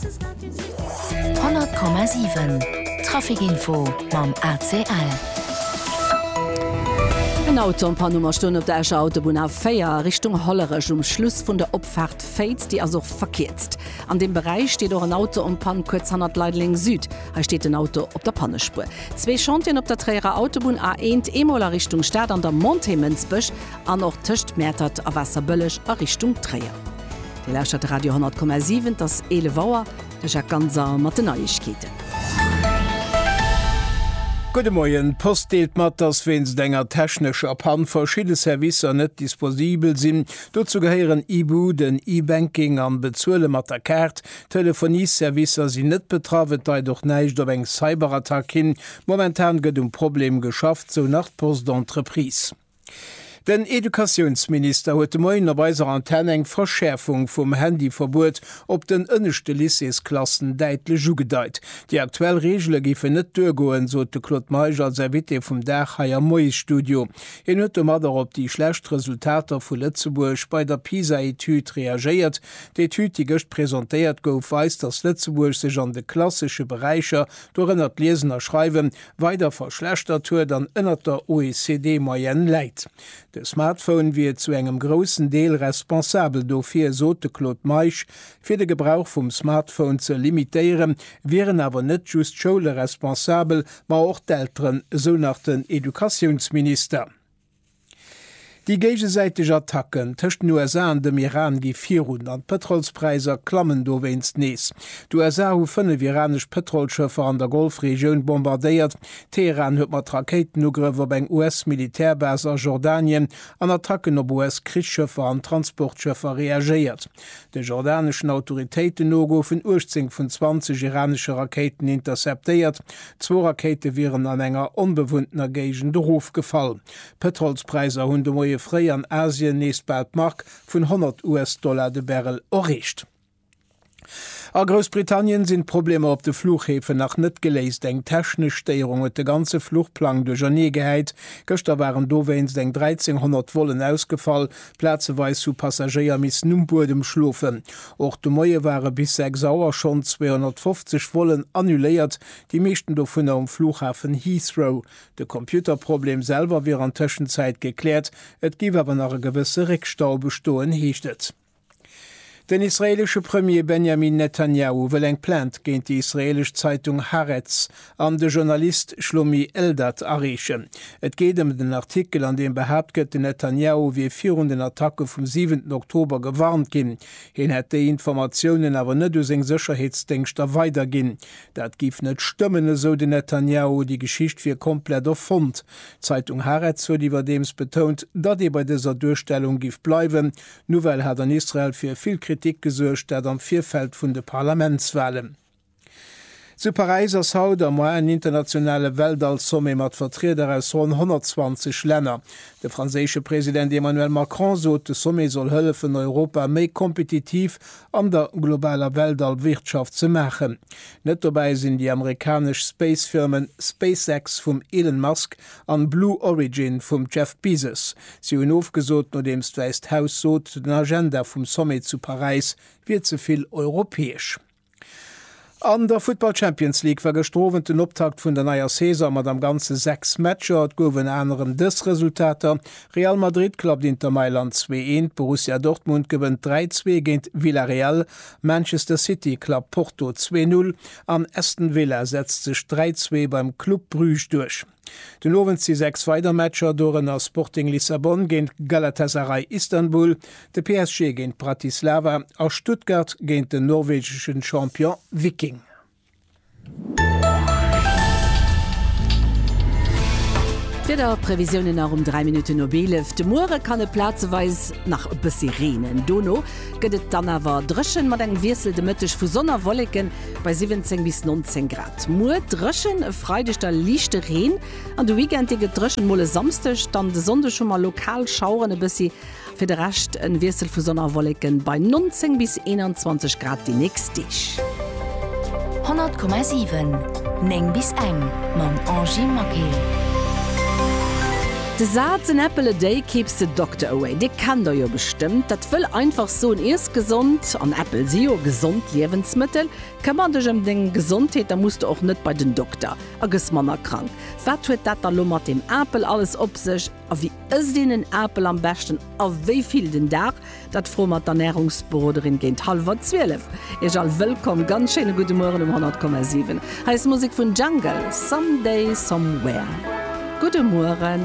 100,7 Trafic Info mam ACL. En Auto an Panne um a stoen op der Escher Autobunn A4 Richtung Hollerech um Schluss vun der Opfaart Féiz. Déi ass och verkierzt. An deem Beräich steet och en Auto um Pann kuerz hannert Leideleng Süd. Hei steet den Auto op der Pannespuer. Zwee Chantieren op der Tréierer Autobunn A1, eemol a Richtung Stad an der Montée Mënsbech an och tëscht Mäertert a Waasserbëlleg a Richtung Tréier. Dir lauschtert de Radio 10,7, et ass 11 Auer, de Jacques Ganser mat den Neiegkeeten. Gudde Moien, d'Post deelt mat, dass wéinst enger technescher Pann verschidde Servicer net disposibel sinn. Dozou gehéieren Ibu, den E-Banking an Bezuele mat der Kaart. D'Telefonieservicer sinn net betraff, et deit och näischt op eng Cyberattack hin. Momentan gëtt um Problem geschafft, sou nach d'Post Entreprise. Den Educatiounsminister huet de Moien op eiser Antenn eng Verschäerfung vum Handyverbuet op den ënneschte Lycéesklassen däitlech ugedeit. Déi aktuell Reegele géifen net duergoen, sot de Claude Meisch als Invité vum Dag hei am Moiesstudio. Hien huet domat och op déi schlecht Resultater vu Lëtzebuerg bei der PISA-Etüd reagéiert. D'Etüd, déi gëscht presentéiert gouf, weist, datt Lëtzebuerg sech an de klassesche Beräicher, dorënner d'Liesen a Schreiwen, weider verschlechtert huet an ënnert der OECD-Moyenne läit. De Smartphone wier zu engem groussen Deel responsabel dofir, sot de Claude Meisch. Fir de Gebrauch vum Smartphone ze limitéieren, wieren awer net just d'Schoule responsabel, ma och d'Elteren, esou nach den Educatiounsminister. Déi géigesäiteg Attacken tëscht den USA an dem Iran gi virun an d'Pëtrolspräisser klammen dowéinst nees. D'USA hu fënnef iranesch Pëtrolschëffer an der Golfregioun bombardéiert. Teheran huet mat Rakéitenugrëff op eng US-Militärbase a Jordanien an Attacken op US-Krichsschëffer an Transportschëffer reagéiert. De jordaneschen Autoritéiten no goufen 18 vun 20 iranesche Rakéiten interceptéiert. Zwou Rakéite wieren an enger onbewunntener Géigend erofgefall. D'Pëtrolspräisser hunn de Moie fréi an Asien nees bal d'Mark vun 100 US-Dollar de Barrel erreecht. A Groussbritannien sinn d'Problemer op de Fluchhäfen nach net geléist. Eng technesch Stéierung huet de ganze Fluchplang duerchernee gehäit. Gëschter waren dowéinst eng 1.300 Vollen ausgefall, Plazeweis hu Passagéier missen um Buedem schlofen. Och de Moie ware bis 6 Auer schonn 250 Vollen annuléiert, déi meeschten dovunner um Flughafen Heathrow. De Computerproblem selwer wier an Tëschenzäit gekläert, et géif awer nach e gewësse Réckstau bestoen, heescht et. Den israeelesche Premier Benjamin Netanjahu wëll eng Plainte géint déi israeelesch Zeitung Haaretz an de Journalist Shlomi Eldad areechen. Et geet ëm den Artikel, an deem behaapt gëtt, den Netanjahu wier virun den Attacke vum siwenten Oktober gewarnt ginn. Hien hätt déi Informatiounen awer net u seng Sécherheetsdéngschter weiderginn. Dat géif net stëmmen, esou den Netanjahu. Déi Geschicht wier komplett erfonnt. D'Zeitung Haaretz huet iwwerdeems betount, datt ee bei dëser Duerstellung géif bleiwen, D'Nouvelle hat an Israel fir vill Kritik gesuergt, dat am Virfeld vun de Parlamentswalen. Zu Paräis ass haut am Moien en internationale Weltall-Sommet mat Vertrieder aus ronn 120 Länner. De franséische President Emmanuel Macron sot, de Sommet soll hëllefen, Europa méi kompetitiv an der globaler Weltall-Wirtschaft ze maachen. Net dobäi sinn déi amerikanesch Space-Firmen SpaceX vum Elon Musk an Blue Origin vum Jeff Bezos. Si hunn ofgesot, nodeems d'Wäisst Haus sot, den Agenda vum Sommet zu Paräis wier ze vill europäesch. An der Futtball-Champions League war gëschter Owend den Optakt vun der neier Saison mat am Ganze 6 Matcher. Et gouf ënner anerem dës Resultater, Real Madrid klappt Inter Mailand 2, 1, Borussia Dortmund gewënnt 3, 2 géint Villarreal, Manchester City klappt Porto 2, 0, An Aston Villa setzt sech 3, 2 beim Club Bruges duerch. Den Owend si 6 weider Matcher, dorënner Sporting Lissabon géint Galatasaray Istanbul, de PSG géint Bratislava a Stuttgart géint den norwegeschen Champion Viking. D'Wieder, d'Previsiounen nach um 3 Minutten op 11, De Muere kann et plazeweis nach e bëssi reenen, dono gëtt et dann awer dréchen, mat engem Wiessel de Mëtteg vu Sonn a Wolleken bei 17 bis 19 Grad. Muer dréchen, e Freideg da liichte Reen an de Weekend dee gëtt dréchen, mol e Samsdeg, dann de Sonndeg hu mer lokal Schaueren e bëssi. Fir de Rescht en Wiessel vu Sonn a Wolleken bei 19 bis 21 Grad déi nächst Deeg. 100,7 9 bis eng mam Angy Maquet. De Saz en apple a day keeps the doctor away, dee kennt der jo bestëmmt. Dat wëll einfach soen, iess gesond, an Äppel si jo gesond Liewensmëttel. Këmmer dech ëm deng Gesondheet, da muss de och net bei den Dokter a gëss manner krank. Wat huet dat da lo mat deem Apel alles op sech? A wéi ësst een en Apel am beschten a wéi vill den Dag? Dat froe mer d'Ernärungsberoderin géint hallwer 12. Iech all wëllkomm, ganz schéine gudde Mueren um 100,7. Hei ass Musek vun Jungle, Someday Somewhere. Gudde Mueren.